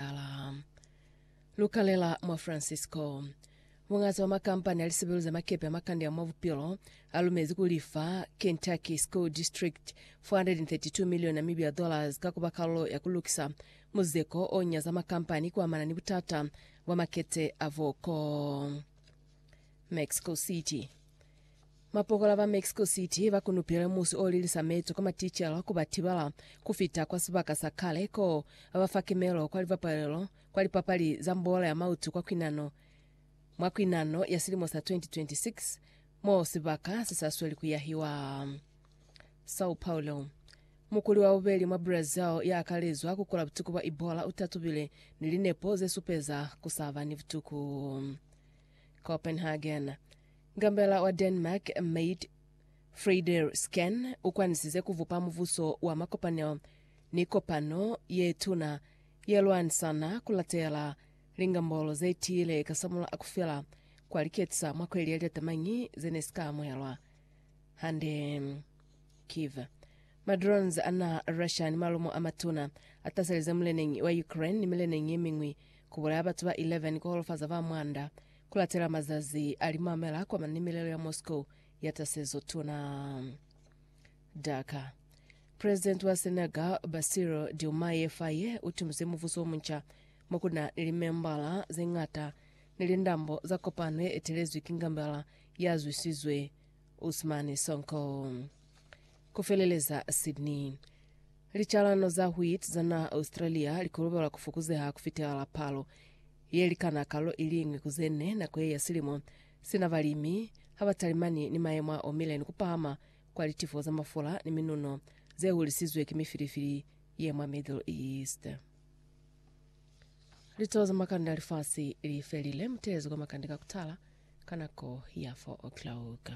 Tala. Lukalela mwa Francisco. Muñazi wa makampani a lisebelu za makepe a makande a mwa bupilo alumezi kulifa Kentucky School District 432 million Namibia dollars ka kuba kalulo ya kulukisa muzeko o nyaza makampani kuamana ni butata bwa makete a voko. Mexico City. Mapokola ba Mexico City ba kunupile musi o lilisa meto kwa maticela ku ba tibala ku fita kwa sibaka sa kale ko ba ba fa kimelo kwa libapalelo kwa lipapali za mbola ya mautu kwa kwinano mwa kwinano ya silimo sa 2026 mo sibaka se sa sweli ku yahiwa. Sao Paulo. Mukuli wa bubeli mwa Brazil ya akalezwa ku kula butuku bwa Ebola u tatubile ni linepo ze supeza ku sa ba ni butuku. Copenhagen. Ngambela wa Denmark Mette Frederiksen u kwanisize ku bupa mubuso wa makopanelo ni kopano ye tuna ye lwanisana ku latela lingambolo ze tiile ka samula a ku fela kwa liketisa mwa kweli ya litatamanyi ze ne si ka amuhelwa hande. Kyiv. Ma drones a naha Russia ni malumo a matuna a taselize muleneñi wa Ukraine ni mileneñi ye miñwi ku bulaya batu ba 11 ku holofaza ba mwanda Ku latela mazazi a limamela kwa mane milelo ya Moscow ya tasezo tuna. Dhaka. President wa Senegal Bassirou Diomaye Faye u tumize muvuso wo munca mo ku na ni limembala ze ngata ni lindambo za kopano ye etelezwi ki ngambela ya zwisizwe Ousmane Sonko. Ku feleleza Sydney. Licalano za wheat za naha Australia li kolobelwa ku fokuzeha ku fitelela palo ye likana kalo i liñwi ku ze ne nako ye ya silimo, sina balimi ha ba talimani ni mayemo a omile ni ku pahama kwa litifo za mafula ni minuno ze hulisizwe ki mifilifili ye mwa Middle East. Litoho za makande a lifasi li felile. Mu teezi kwa makande ka ku tala ka nako ya 4 o'clock.